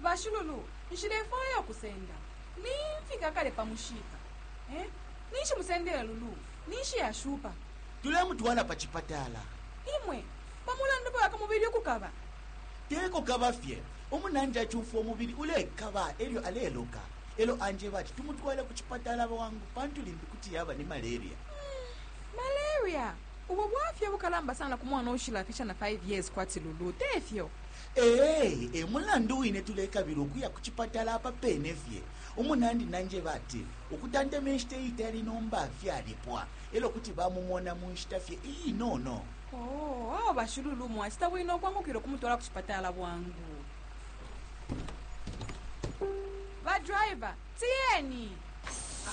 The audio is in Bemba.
Bashululu, nshilefwaya ukusenda. Nimfika kale pa mushiika. Eh? Ninshi musendele Lulu? Ninshi ashupa? Tulemutwala pa cipatala. Imwe, pa mulandu fye wa ku mubili ukukaba? Te kukaba fye. Umunandi acumfwa umubili ulekaba e lyo aleloka. E lyo anjeba ati tumutwale ku cipatala bwangu pantu limbi kuti yaba ni maleria. Hmm, maleria? Ubo bwafya ubukalamba sana ku mwana uushilafisha na 5 years kwati Lulu, te fyo? Ee, e mulandu wine tulekabila ukuya ku cipatala apa pene fye. Umunandi nanjeba ati ukutanteme nshita iitali nomba fyalipwa e lyo kuti bamumona mu nshita fye iinono. Oo, awe bashi Lulu mwacita bwino ukwangukila ukumutwala ku cipatala bwangu. Badriver, tiyeni!